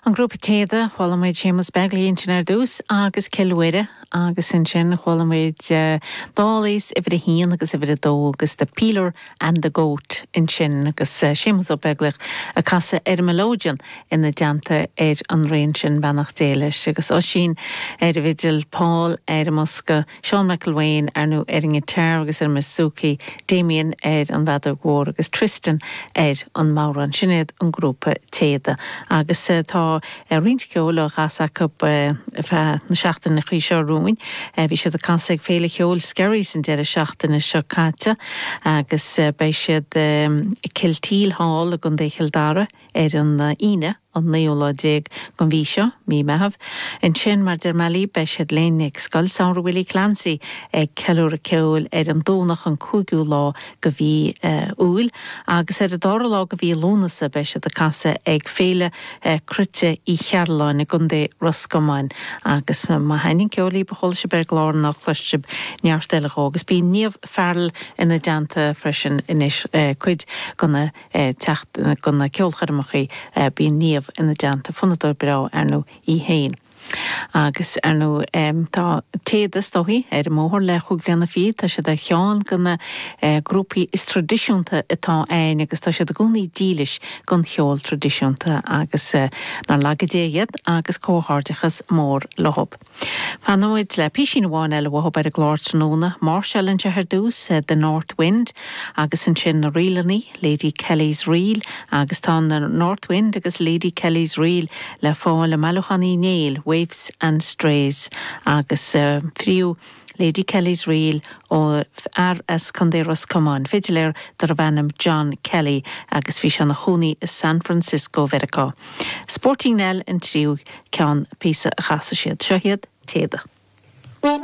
An grúpa Téada, chuala muid Séamus Begley ansin ar dtús agus Cill Mhuire agus ansin chuala muid Dawlays uimhir a haon agus uimhir a dó agus The Peeler and the Goat ansin agus Séamus Ó Beaglaoich ag casadh ar an melodeon ina dteannta ar an rian sin, beannacht Dé leis, agus Oisín ar an bhfidil, Paul ar an mbosca. Seán McElwain, ar ndóigh ar an ngiotár agus ar an mbouzouki, Damien ar an bhfeadóg mhór agus Tristan ar an mbodhrán, sin iad an grúpa Téada agus tá roinnt ceoil á chasadh acu ar feadh na seachtainí seo romhainn. Bhí siad ag casadh ag féile cheoil Skerries an deireadh seachtaine seo caite agus beidh siad i Kilteel Hall i gContae Chill Dara, ar an Aoine an naoú lá déag den mhí seo, Mí Meitheamh. Ansin, mar deir Mallie, beidh siad linn ag Scoil Samhraidh Willie Clancy ag ceiliúradh ceoil ar an Domhnach an cúigiú lá de mhí Iúil agus ar an dara lá de mhí Lúnasa beidh siad ag casadh ag Féile Cruite Uí Chearbhalláin i gContae Ros Comáin agus má thaitníonn ceol libh a chlois sibh ar an gclár cloisfidh sibh neart eile dhó agus bíonn Niamh Farrell ina dteannta freisin anois cuid go na ag teacht go na ceolchoirmeacha bíonn Niamh ina dteannta fonnadóir breá ar ndóigh í féin agus ar ndóigh tá Téada is dóigh ar an mbóthar le cúig bliana fichead tá siad ar cheann de na grúpaí is traidisiúnta atá a'inn agus tá siad i gcónaí dílis gon cheol traidisiúnta agus nár laga Dia iad agus comhghairdeachas mór leo. Fanfaimid le písín amháin eile uathu ar an gclár tráthnóna. Máirseáil anseo ar dtús, The North Wind, agus ansin na ríleanna, Lady Kelly's Reel, agus tá The North Wind agus Lady Kelly's Reel le fáil i mbailiúchán Uí Néill, Waifs and Strays, agus thríú. Lady Kelly's Reel ó fhear as Contae Ros Comáin, fidiléir darbh ainm John Kelly agus bhí sé ina chónaí i San Francisco Mheiriceá. Sporting Nell an tríú ceann, píosa a chasfaidh siad. Seo iad, Téada.